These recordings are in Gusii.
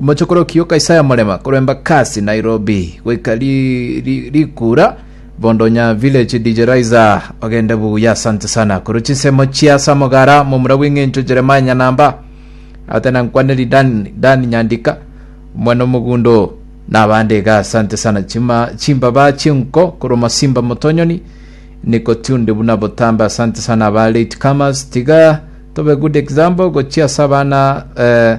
Omochokoro okiyoka Isaya Morema korwa Embakasi, Nairobi, goika ri- ri- rikura bondo onya village DJ Raiza ogende buya asante sana korwa chisemo chia Samogara momura bw'eng'encho Jeremiah Nyanamba ate na nkwaneri Dan, Dan Nyandika omwana omogundo na abande iga asante sana chima chimbaba chinko korwa Masimba Motonyoni niko tunde buna botambe asante sana aba late comers tiga tobe good example gochia ase abana eh,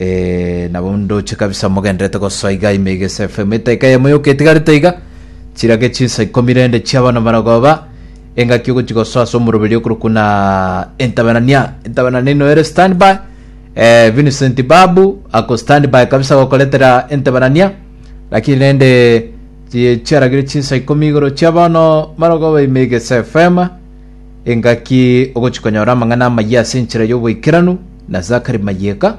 Ee, nabo ndoche kabisa mogenderete gosoa iga ime iga ase FM etaika eyemo yoka etigarete iga, chirage chinsa ikomi rende chiabana maragoba, engaki ogochi gosoa ase omoroberi okorwa kuna Entabenania. Entabenania ino ere standby, eh, Vincent Babu ako standby kabisa gokoretera Entabenania, lakini rende chi- chiaragire chinsa ikomi igoro chiabono maragoba ime iga ase FM, Engaki ogochia konyora amang'ana amayia ase enchera y'oboikeranu na Zakari Mayeka.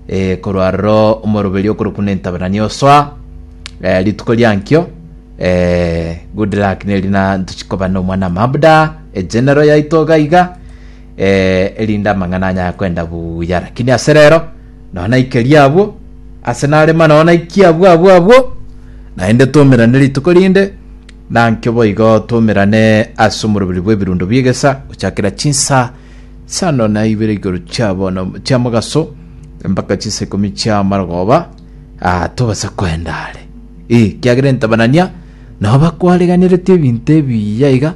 Eh, korwa aroro omoroberi okorokwa na entaberani osoa eh, rituko riankio eh, good luck neri na ntochikoba na omwana mabuda egenero yaito gaiga eh, erinde amang'ana anyaya kwenda buya lakini ase rero nonya naikeria abwo ase narema nonya naikia abwo abwo abwo naende tomerane rituko rinde Nankio boigo twaumerane ase omoroberi bw'ebirundo bi'egesa, gochakera chinsaa isano na ibere igoro chia bono chia mogaso, mpaka chinsaa ikomi chia marogooba, aa, tobase koenda are. Ee, ekiagera entabanania nao bakwareganeretie ebinto ebiya iga,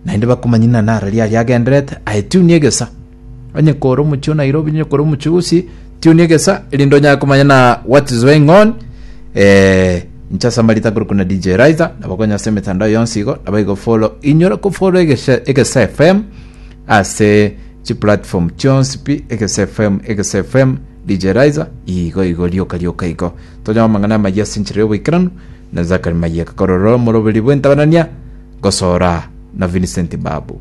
naende bakomanya ing'ana araria aria agendererete, aetiunie egesa. Onye kore omochie o Nairobi, onye kore omochie o Gusii, tiunia egesa erinde onyare komanya na what is going on. Eh, inche ase amarita kore kuna DJ Riser, nabakonya ase emetandao yonsi igo, nabaigo follow. Inyora ko follow egese, egese FM, ase chi platform chionsi pi egese fm egese fm dj riser igo igo rioka rioka igo tonyama mang'ana amayia ase enchera y'oboikeranu na zakari mayeka korora omoroberi bw'entabanania gosora na vincent babu